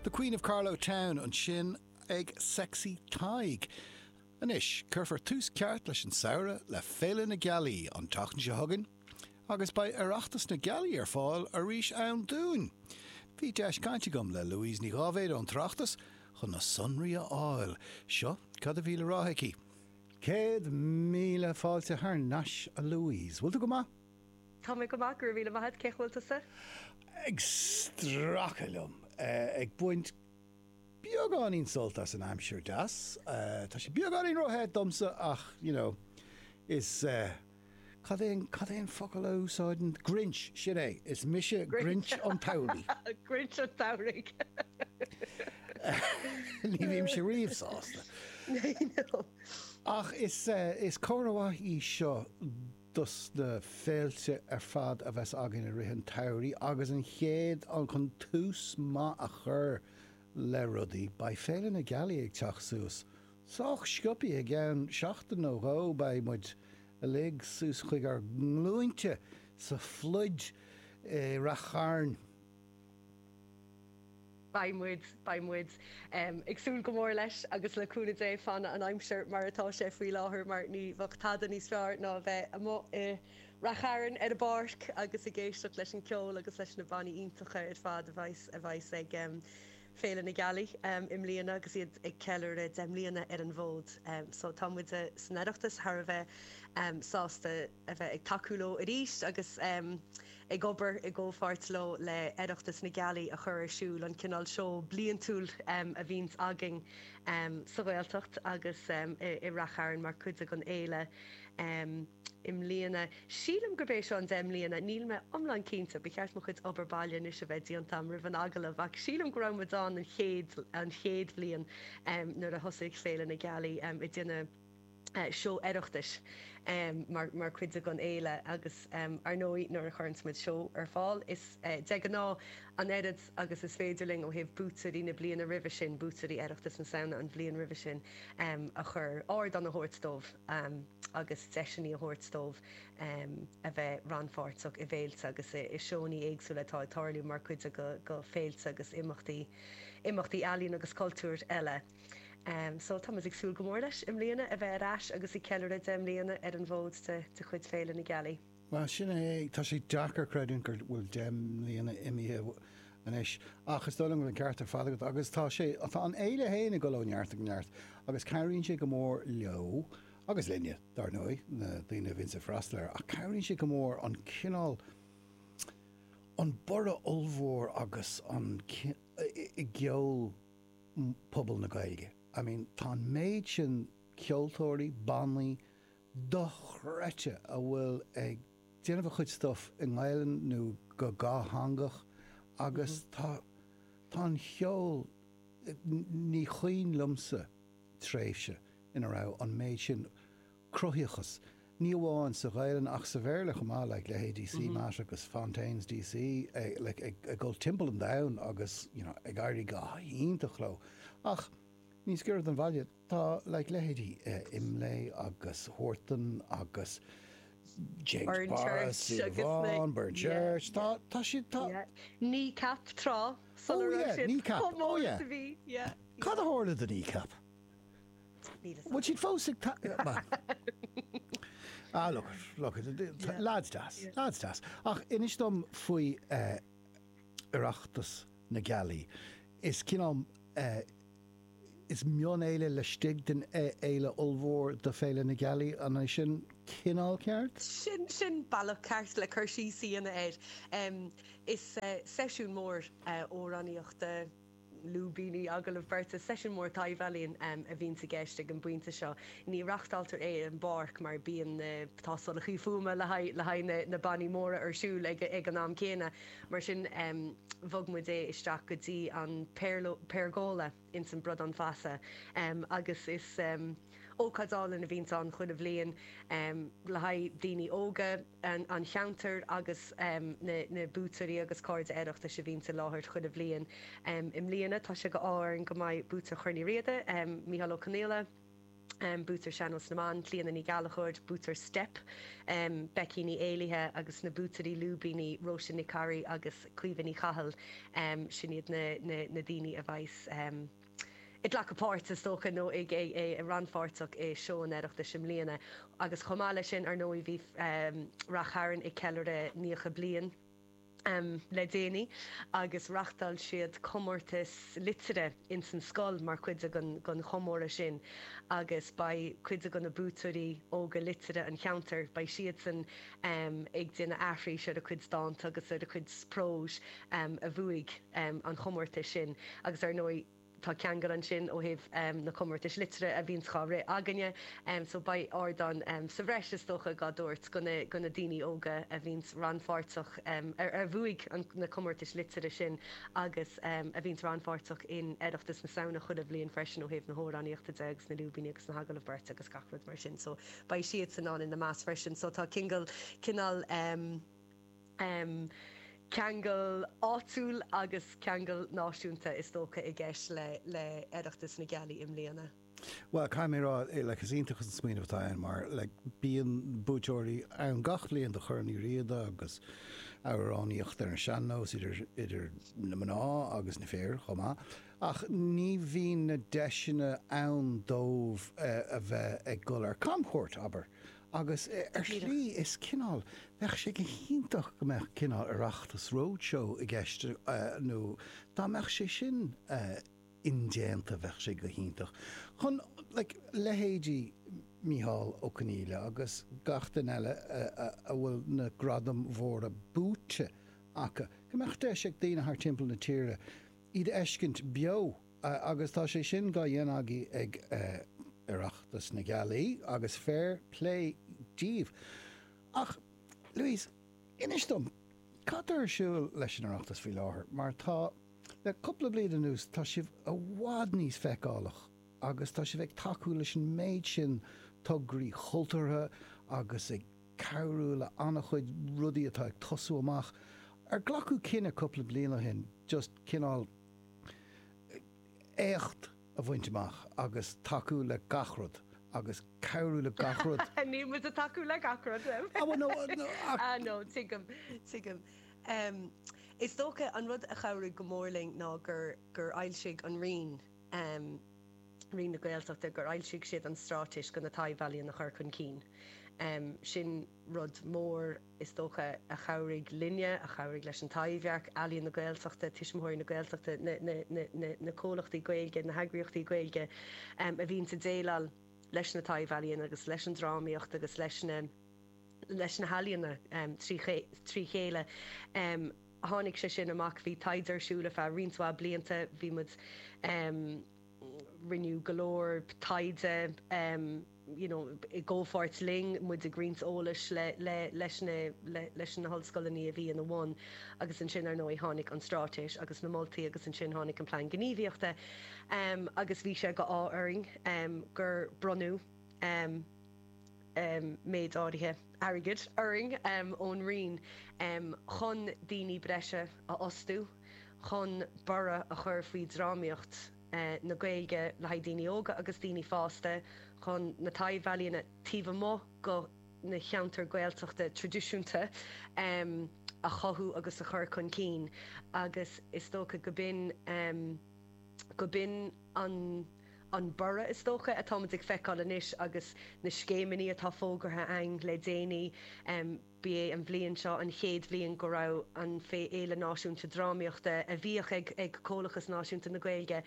The Queen of Carlow Town ansin ag Sexy Tadhg. Anois, cuirfear tús ceart leis an samhradh le Féile na Gealaí an tseachtain seo chugainn agus beidh Oireachtas na Gealaí ar fáil arís ann dúinn. Bhí deis cainte agam le Louise Ní Dháibhéid ón tOireachtas chun na sonraí a fháil. Seo cad a bhí le rá aici. Céad míle fáilte thar nais, a Louise. Bhfuil tú go maith? Tá mé go maith, go raibh míle maith a'd, cén chaoi a bhfuil tusa? Ag stracadh liom, ag baint beagáinín sult as an aimsir deas. Tá sé beagáinín ró-the domsa ach you know, is eh, cad é an, cad é an focal a úsáideann, grinch, sin é, is mise grinch an tsamhraidh. Grinch an tsamhraidh! Ní bhímse riamh sásta. Ach is eh, is comhartha maith í seo. do sna féilte ar fad a bheas againn i rith an tsamhraidh agus an chéad cheann chun tús maith a chur le rudaí, beidh Féile na Gealaí ag teacht suas. Sách sciopthaí, i gceann seachtain nó dhó, beidh muid uilig suas chuig ár nglúinte sa phluda i Rath Chairn. Beidh muid, beidh muid, ag súil go mór leis agus le cúnamh Dé fanfaidh an aimsir mar atá sé faoi láthair mar ní bheadh tada níos fearr ná a bheith amuigh i Rath Chairn ar an bpáirc agus ag éisteacht leis an ceol agus leis na bannaí iontacha ar fad a bheas, a bheas ag Féile na Gealaí i mbliana agus iad ag ceiliúradh deich mbliana ar an bhfód. So tá muid san Oireachtas thar a bheith sásta. a bheith ag tacú leo arís agus ag obair i gcomhpháirt leo le Oireachtas na Gealaí a chur ar siúl, an cineál seó bliantúil a bhíonns againn sa Ghaeltacht agus i Rath Chairn mar chuid den fhéile i mbliana. Sílim gurb é seo an deich mbliana, níl mé iomlán cinnte, ba cheart mo chuid obair baile anois a bheith déanta agam roimh an agallamh, ach sílim go raibh muid ann an chéad bhliain nuair a thosaigh Féile na Gealaí i dtaobh an. seó Oireachtais mar chuid den fhéile agus, ar ndóigh, nuair a chuireann muid seó ar fáil, is de ghnáth an oiread agus is féidir linn ó thaobh buaiteoirí na bliana roimhe sin, buaiteoirí Oireachtas na Samhna an bhliain roimhe sin, a chur, ardán a thabhairt dóibh agus deiseanna a thabhairt dóibh a bheith rannpháirteach i bhféilte agus i seónna éagsúla atá ag tarlú mar chuid de féilte agus imeachtaí, imeachtaí ealaíon agus cultúir eile. So, tá muid ag súil go mór leis, i mbliana, a bheith ar ais agus ag ceiliúradh deich mbliana ar an bhfód de chuid Féile na Gealaí. Bhuel, sin é, tá sé deacair creidiúint go bhfuil deich mbliana imithe anois, ach is dóigh liom go bhfuil an ceart ar fad agat, agus tá sé, tá an Fhéile fhéin ag dul ó neart go neart, agus cabhraíonn sé go mór leo, agus linne, dár ndóigh, na daoine a bhíonns ag freastal air, ach cabhraíonn sé go mór an cineál, an borradh ollmhór agus an, i gceol, bpobal na Gaeilge. I mean tá an méid sin ceoltóirí, bannaí, dochreidte a bhfuil ag déanamh a chuid stuff i nGaelainn nó go dhátheangach agus tá, tá an cheol, ní chuimhin liomsa tréimhse ina raibh an méid sin cruthaitheachas, ní amháin sa Ghaelainn ach sa Bhéarla chomh maith, like leithéidí CMAT agus Fontaines DC, like ag ag dul timpeall an domhain agus you know ag éirí go hiontach leo. Ach níos giorra don bhaile, tá like leithéidí Imlé agus Huartan agus Séamus Barra, Burnchurch agus na- Súil Amháin, Burnchurch, yeah, tá tá siad tá Yeah. Kneecap trá. Oh, yeah, Kneecap. Oh, yeah. Cad a tharla do Kneecap? Bhfuil siad fós ag ta-? Ah, look it, look it, lads deas, lads deas. Ach inis dom faoi Oireachtas na Gealaí. Is cineál, is mionfhéile laistigh den fhéile ollmhór do Féile na Gealaí, an é sin cineál ceart? Sin, sin bealach ceart le cur síos a dhéanamh air. Is seisiún mór amhránaíochta. lúibíní, agallaimh beirte, Seisiún mór taibhealaíon a bhíonns i gceist ag an bpointe seo. Ní reachtáiltear é i bpáirc mar bíonn na tástálachaí fuaime le haghaidh na bannaí móra ar siúl ag an am céanna. Mar sin bhog muid é isteach go dtí an Pergola ins an Bradán Feasa agus is ócáid álainn a bhíonns ann chuile bhliain le haghaidh daoine óga, an cheantair agus na buaiteoirí agus cairde Oireachtais a bhíonns i láthair chuile bhliain. I mbliana tá sé d'ádh orainn go mbeidh buaiteoir Chorn Uí Riada, Micheál Ó Confhaola, buaiteoir Sean-Nós na mBan, Clíodhna Ní Ghallachóir, buaiteoir Steip, Becky Ní Éallaithe, agus na buaiteoirí Lúibíní, Róise Nic Corraidh agus Caoimhe Ní Chathail. Sin iad na daoine a bheidhs. ag glacadh páirt, is dócha, nó i rannpháirteach i Seó an Oireachtais i mbliana, agus chomh maith leis sin, ar ndóigh, bhí Ráth Chairn ag ceiliúradh naocha bliain le déanaí agus reachtáil siad comórtas liteartha ins an scoil mar chuid den chomóradh sin agus beidh cuid de na buaiteoirí óga liteartha an cheantair, beidh siadsan ag déanamh aithris ar a chuid dánta agus ar a chuid próis a bhuaigh an chomórtas sin agus ar ndóigh tá ceangal ansin ó thaobh na comórtais liteartha a bhíonns dhá rith againne so beidh ardán sa bhreis is dócha dhá dtabhairt do na daoine óga a bhíonns rannpháirteach ar ar bhuaigh na comórtais liteartha sin agus a bhíonns rannpháirteach in Oireachtas na Samhna chuile bhliain freisin ó thaobh na hamhránaíochta de agus na lúibíní agus na hagallaimh beirte agus gach rud mar sin so beidh siadsan ann ina measc freisin. So tá cingal, cineál em, em, ceangal áitiúil agus ceangal náisiúnta is dócha i gceist le, le Oireachtas na Gealaí i mbliana. Bhuel, caithfidh mé a rá, eh, like, is iontach an smaoineamh atá ann mar, like, bíonn buaiteoirí ann gach bliain do Chorn Uí Riada agus amhránaíocht ar an sean-nós idir, idir na mná agus na fir chomh maith. ach ní bhíonn na deiseanna ann dóibh a bheith ag dul ar camchuairt, abair. Agus, ar shlí, is cineál, bheadh sé go hiontach go mbeadh cineál Oireachtas roadshow i gceist, nó dá mbeadh sé sin indéanta, bheadh sé go hiontach chun, like, leithéidí Micheál Ó Confhaola agus gach duine eile a bhfuil na gradaim mhóra buaite acu, go mbeadh deis ag daoine thar timpeall na tíre, iad a fheiscint beo agus tá sé sin dá dhéanamh agaibh ag Oireachtas na Gealaí agus fair plé díbh. Ach, Louise, inis dom, cad tá ar siúl leis an Oireachtas faoi láthair mar tá, le cúpla bliain anuas, tá sibh i bhfad níos feiceálach agus tá sibh ag tacú leis an méid sin tograí chultúrtha agus ag. cabhrú le an-chuid rudaí atá ag tosú amach, ar glacadh cinneadh cúpla bliain ó shin just cineál éacht a bhaint amach agus tacú le gach rud agus cabhrú le gach rud. Níl muid ag tacú le gach rud, Liam. Ah bhuel no no ach. Ah no tuigim tuigim. Is dócha an rud a chabhraigh go mór linn ná gur gur fhoilsigh an Roinn, um Roinn na Gaeltachta gur fhoilsigh siad an straitéis chun na taibh-ealaíona a chur chun cinn. um Sin rud mór, is dócha, a chabhraigh linne, a chabhraigh leis an Taibhdhearc, Ealaíon na Gaeltachta, Tuismitheoirí na Gaeltachta, na na na comhlachtaí Gaeilge, na heagraíochtaí Gaeilge um a bhíonns a' déileáil leis na taibh-ealaíona agus leis an drámaíocht agus leis na leis na healaíona um trí trí chéile. um tháinig sé sin amach. Bhí taighde ar siúl ar feadh roinnt mhaith blianta. Bhí muid, rinneadh go leor taighde you know i gcomhpháirt linn, muid ag roinnt eolais le, le, leis na, le, leis na hollscoileanna a bhí ina bhun agus ansin ar ndóigh tháinig an straitéis agus na moltaí agus ansin tháinig an plean gníomhaíochta agus bhí sé d'ádh orainn gur bronnadh méid áirithe airgid orainn ón Roinn chun daoine breise a fhostú chun borradh a chur faoi dhrámaíocht na Gaeilge le haghaidh daoine óga agus daoine fásta, chun na taibhealaíona taobh amuigh de na cheantair Gaeltachta traidisiúnta a chothú agus a chur chun cinn agus is dócha go b'in an. An borradh, is dócha, atáimid ag feiceáil anois agus na scéimeanna atá fógartha againn le déanaí, ba é an bhliain seo an chéad bhliain go raibh an Fhéile Náisiúnta Drámaíochta, a bhíodh ag Comhlachas Náisiúnta na Gaeilge,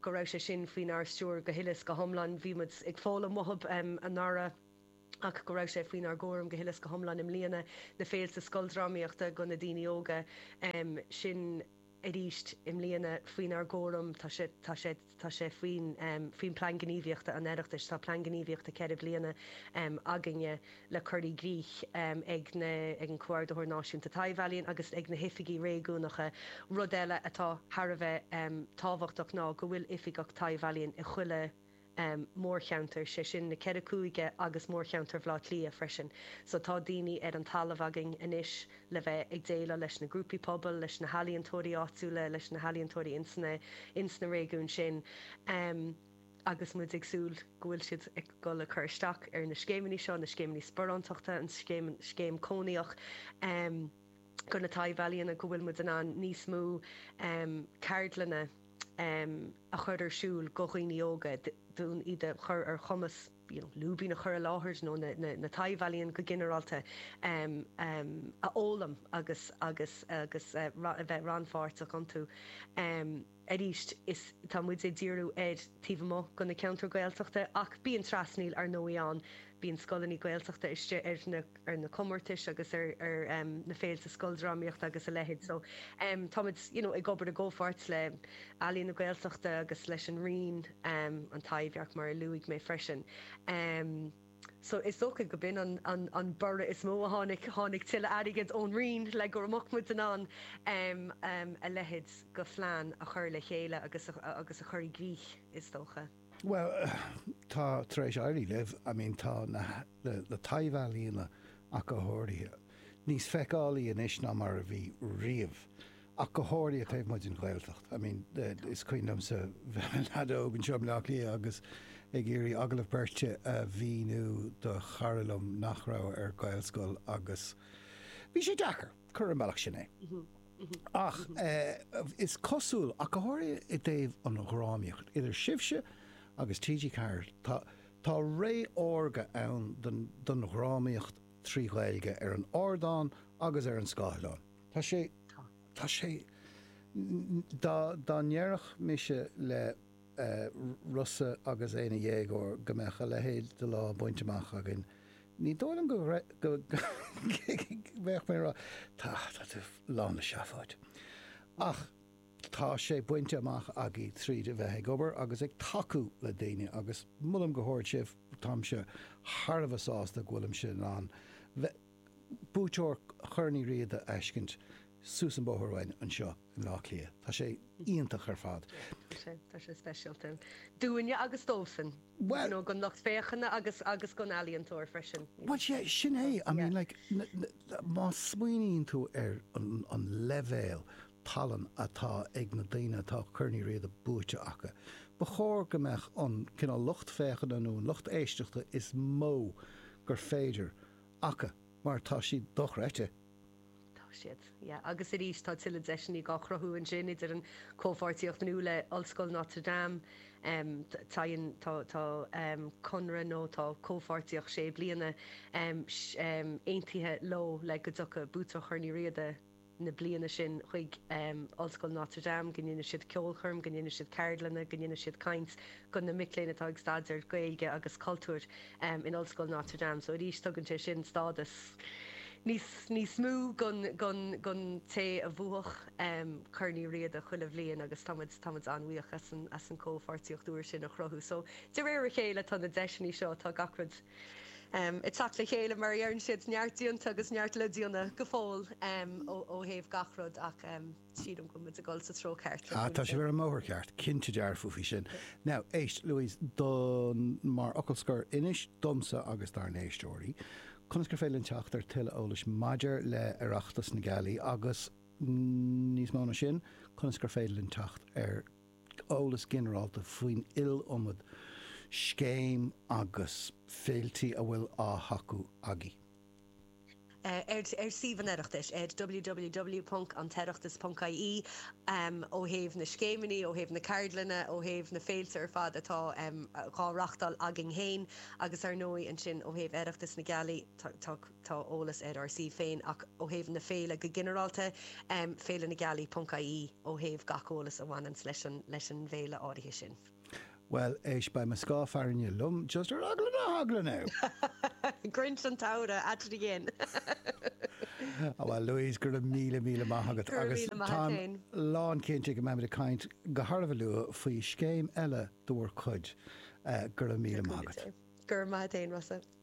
go raibh sé sin faoinár stiúir go huile is go hiomlán. Bhí muid ag foghlaim uathub anuraidh ach go raibh sé faoinár gcúram go huile is go hiomlán i mbliana, na féilte scoildrámaíochta do na daoine óga sin, arís i mbliana faoinár gcúram. Tá sé, tá sé, tá sé faoin, faoin Plean Gníomhaíochta an Oireachtais, tá Plean Gníomhaíochta ceithre bliana againne le cur i gcrích ag na, ag an Comhordaitheoir Náisiúnta Taibhealaíon agus ag na hOifigigh Réigiúnacha. Rud eile atá thar a bheith tábhachtach ná go bhfuil Oifigeach Taibhealaíon i chuile, mórcheantar, 'sé sin na Ceithre Cúige agus mórcheantar Bhleá Cliath freisin. So tá daoine ar an talamh againn anois le bheith ag déileáil leis na grúpaí pobail, leis na healaíontóirí áitiúla, leis na healaíontóirí ins na, ins na réigiúin sin agus muid ag súil go bhfuil siad ag dul ag cur isteach ar na scéimeanna seo, na scéimeanna sparántachta, an scéim, scéim cónaitheach go na taibhealaíona, go bhfuil muid in ann níos mó ceardlanna, a chur ar siúl do dhaoine óga d'fhonn iad a chur ar chumas you know lúibín a chur i láthair nó na taibhealaíona go ginearálta a fhoghlaim agus agus agus a bheith rannpháirteach iontu. Arís, is tá muid ag díriú ar taobh amuigh de na ceantair Ghaeltachta ach bíonn trasnaíl, ar ndóigh, ann. Bíonn scoileanna Gaeltachta istigh ar na. ar na comórtais agus ar na féilte scoildrámaíochta agus a leithéid. So, táimid, you know, ag obair i gcomhpháirt le Ealaín na Gaeltachta agus leis an Roinn, an Taibhdhearc mar a luaigh mé freisin. So, is dócha go b'in an borradh is mó a tháinig, tháinig tuilleadh airgid ón Roinn le go raibh muid in ann a leithéid go phlean a chur le chéile agus a chur i gcrích, is dócha. Bhuel, tá tar éis éirí libh, I mean tá na na taibhealaíona ach go háirithe, níos feiceálaí anois ná mar a bhí riamh, ach go háirithe taobh amuigh den Ghaeltacht. I mean is cuimhin liomsa bheith i mo leaid óg anseo i mBleá Cliath agus ag iarraidh agallamh beirte a mhíniú do chara liom nach raibh ar Ghaelscoil agus bhí sé deacair, cuir ar an mbealach sin é. Ach is cosúil, ach go háirithe i dtaobh an dhrámaíocht, idir sibhse agus TG4, tá, tá ré órga ann don dhrámaíocht trí Ghaeilge ar an ardán agus ar an scáileán. Tá sé, tá sé, dá ndéarfadh mise le. Rosa agus é ina dhéagóir, go mbeadh a leithéid de lá bainte amach againn. Ní dóigh liom go mbeadh mé ag rá, Tá tú lán le seafóid. Ach tá sé bainte amach againn tríd a bheith ag obair agus ag tacú le daoine, agus molaim go hard sibh. Táimse thar a bheith sásta go bhfuilimse in ann bheith. buaiteoir Chorn Uí Riada a fheiscint suas an bóthar uainn anseo in Áth Cliath. Tá sé iontach ar fad. Tá sé, tá sé speisialta. Dúinne agus dósan, you know, gan lucht féachana agus, agus gan ealaíontóir freisin. Bhuel, sea, sin é. I mean, like, má smaoiníonn tú ar an leibhéal tallann atá ag na daoine atá Corn Uí Riada buaite acu, ba chóir go mbeadh an cineál lucht féachana nó an lucht éisteachta is mó gur féidir aca, mar tá siad dochreidte. Tá siad, yeah. Agus arís, tá tuilleadh deiseannaí dhá chruthú ansin idir an comhpháirtíocht nua le Ollscoil Notre Dame, em, téann, tá, tá, em, conradh nó tá comhpháirtíocht sé bliana, em, sh, em, aontaithe leo le go dtiocfadh buaiteoir Chorn Uí Riada, na bliana sin chuig Ollscoil Notre Dame, go ndéanfadh siad ceolchoirm, go ndéanfadh siad ceardlanna, go ndéanfadh siad caint go na mic léinn atá ag staidéar Gaeilge agus cultúir in Ollscoil Notre Dame. So arís tugann sé sin stádas níos níos mó don don don té a bhuafadh Corn Uí Riada chuile bhliain agus tá muid tá muid an-bhuíoch as an as an comhpháirtíocht úr sin a chruthú. So de réir a chéile tá na deiseannaí seo, tá gach rud, ag teacht le chéile mar a dheireann siad, neart déanta agus neart le déanamh go fóill ó thaobh gach rud ach sílim go bhfuil muid ag dul sa treo ceart. Tá sibh ar an mbóthar ceart, cinnte dearfa faoi sin. Now, éist, Louise, don, mar fhocal scoir, inis domsa agus dár n-éisteoirí conas gur féidir linn teacht ar tuilleadh eolais maidir le Oireachtas na Gealaí agus, níos mó ná sin, conas gur féidir linn teacht ar. eolas ginearálta faoin iliomad scéim agus féiltí a bhfuil á thacú agaí. ar suíomh an Oireachtais, ag www.antoireachtas.ie, ó thaobh na scéimeannaí, ó thaobh na ceardlanna, ó thaobh na féilte ar fad atá dhá reáchtáil againn féin agus, ar ndóigh, ansin ó thaobh Oireachtas na Gealaí. Tá. Tá eolas ar ár suíomh féin ach ó thaobh na féile go ginearálta, Féile na Gealaí ponc ie ó thaobh gach eolas a bhaineanns leis an bhféile áirithe sin. Bhuel, éist, beidh mo scáth fearthainne liom, just ar eagla na heagla, now! Grinch an tSamhraidh at it again! Á, bhuel, Louise, go raibh míle míle maith agat agus táim lán cinnte go mbeimid ag caint go han-luath faoi scéim eile de bhur cuid. Go raibh míle maith agat. Go raibh maith agat féin, Rossa.